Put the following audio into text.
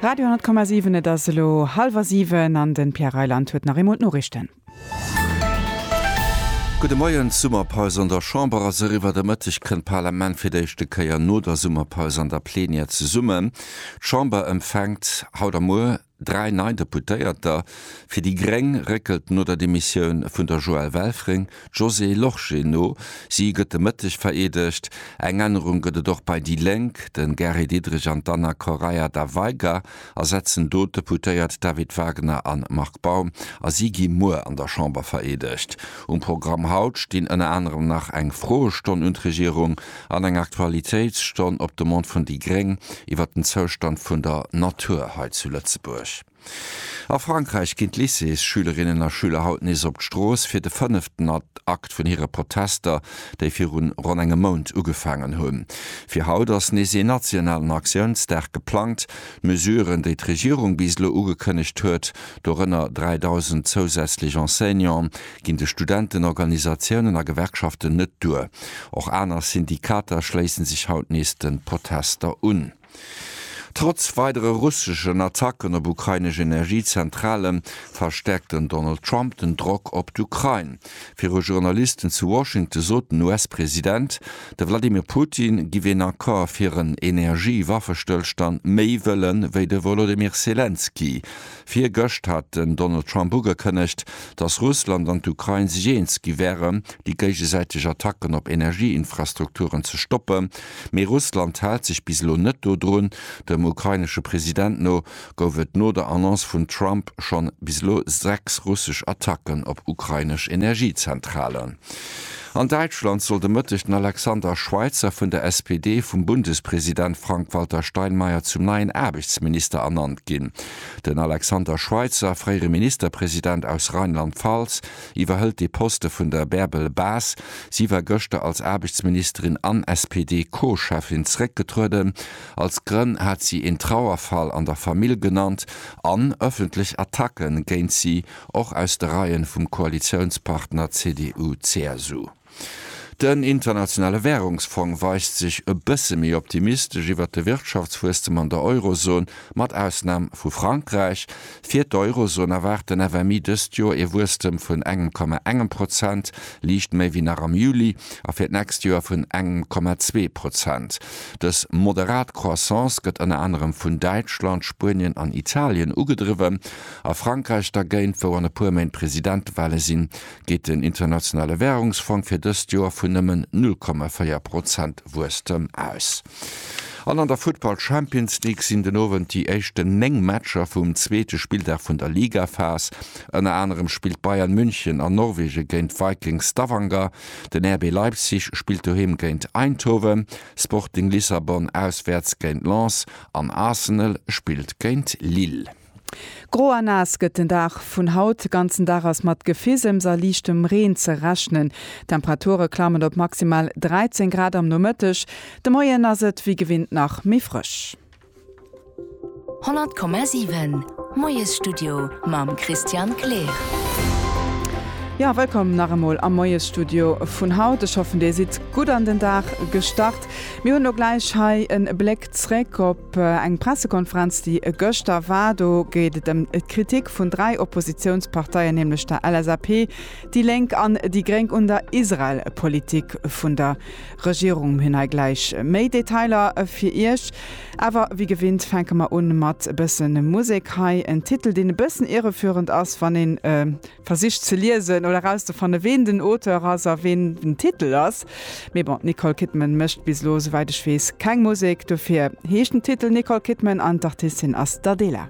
Radio 10,7 Et ass elo hallwer siwen an de Pierre Reyland huet nach eemol d'Noriichten. Gudde Moien. D'Summerpaus an der Chamber ass eriwwer. De Mëtteg kënnt d'Parlament fir d'éischte Kéier no der Summerpaus an der Plenière zesummen. D'Chamber empfänkt haut a muer Dräi nei Deputéierter fir déi gréng réckelt no der Demissioun vun der Joëlle Welfring d'Josée Lorsché no. Si gëtt de Mëtteg vereedegt. Eng Ännerung gëtt et och bei déi Lénk, De Gary Diderich an d'Anna Correia da Veiga ersetzen do d'Deputéiert David Wagner a Marc Baum a si gi muer an der Chamber vereedegt. Um Programm haut stinn ënner anerem nach eng Froestonn un d'Regierung, An enger Aktualitéitsstonn op Demande vun déi gréng iwwert den Zoustand vun der Natur hei zu Lëtzebuerg. A Frankräich ginn d'Lycées-Schülerinnen a Schüler haut nees op d'Strooss fir de fënneften Akt vun hire Protester, déi viru ronn engem Mount ugefaangen hunn. Fir haut ass nees een nationalen Aktiounsdag geplangt. D'Mesuren, déi d'Regierung bis elo ugekënnegt huet, dorënner 3.000 zousätzlech Enseignanten, ginn de Studentenorganisatiounen a Gewerkschaften net duer. Och aner Syndikater schléissen sech haut nees de Protester un. Trotz weidere russeschen Attacken op ukrainesch Energiezentrale verstäerkt den Donald Trump den Drock op d'Ukrain. Viru Journalisten zu Washington sot den US-President, de Wladimir Putin giff een Accord fir en Energie-Waffestëllstand méi wëllen, wéi de Wolodymyr Selenskyj. Virgëscht hat den Donald Trump ugekënnegt, datt Russland an d'Ukrain sech eens gi wäre déi géigesäiteg Attacken op Energieinfrastrukturen ze stoppe, mee Russland hält sech bis elo net dodrun. Dem ukrainesche President no gouf et no der Annonce vum Trump schonn bis elo sechs russesch Attacken op ukrainesch Energiezentralen. An Däitschland sollt e Mëtteg den Alexander Schweitzer vun der SPD vum Bundespresident Frank-Walter Steinmeier zum neien Aarbechtsminister ernannt ginn. Den Alexander Schweitzer, fréiere Ministerpresident aus Rheinland-Pfalz, iwwerhëlt dee Poste vun der Bärbel Bas. Si war gëschter als Aarbechtsministerin an SPD-Co-Cheffin zeréckgetrueden. Als Grënn hat si een Trauerfall an der Famill genannt an ëffentlech Attacke géint si. och aus de Reien vum Koalitiounspartner CDU-CSU. Den Internationale Währungsfong weist sech e bësse méi optimistesch iwwert de Wirtschaftswuesstem an der Eurozon, mat Ausnam vu Frankräich. Fir d'Eurozon erwaart den FMI dëst Joer ee Wuesstem vun engem Komma engem Prozent, liicht méi wéi nach am Juli, a fir d'nächst Joer vun engem Komma zwee Prozent. Dës moderat Croissance gëtt ënner anerem vun Däitschland, Spuenien an Italien ugedriwwen. A Frankräich dergéint, wou an e puer Méint Presidentewale sinn, geet den Internationale Währungsfong fir dëst Joer vun nëmmen 0,4 Prozent Wuesstem aus. An an der Futtball Champions League sinn den Owend déi éischten 9 Matcher vum zweete Spilldag vun der Ligaphas. Ënner anerem spillt Bayern München an Norwegen géint Viking Stavanger, den RB Leipzig spillt doheem géint Eindhoven, Sporting Lissabon auswäerts géint Lens an Arsenal spillt géint Lille. Gro a naass gëtt den Dag vun haut. De ganzen Dag ass mat Gefisems a liichtem Reen ze rechnen. D'Temperature klammen op maximal 13 Grad am Nomëtteg. De Moien ass et wéi gewinnt nach méi frësch. 100,7 Moiesstudio mam Christian Kleer. Jo, wëllkomm nach emol am Moiesstudio vun haut. Ech hoffen, dir sidd gutt an den Dag gestart. Mir hunn elo gläich hei e Bléck. Zréck op eng Pressekonferenz, déi e gëschter war. Do geet et ëm d'Kritik vun dräi Oppositiounsparteien, nämlech der LSAP, déi Lénk an déi Gréng un der Israel-Politik vun der Regierung. Mir hunn hei gläich méi Detailer fir Iech. Awer wéi gewinnt fänke mer un mat e bëssen Musek. Hei en Titel, deen e bëssen irreführend ass, wann een Versicht ze liesen oder erauszefanne ween den Auteur ass a ween den Titel ass. Mee bon, d'Nicole Kidman mécht bis elo, souwäit ech weess, keng Musek. Dofir heescht den Titel Nicole Kidman an d'Artistin ass d'Adela.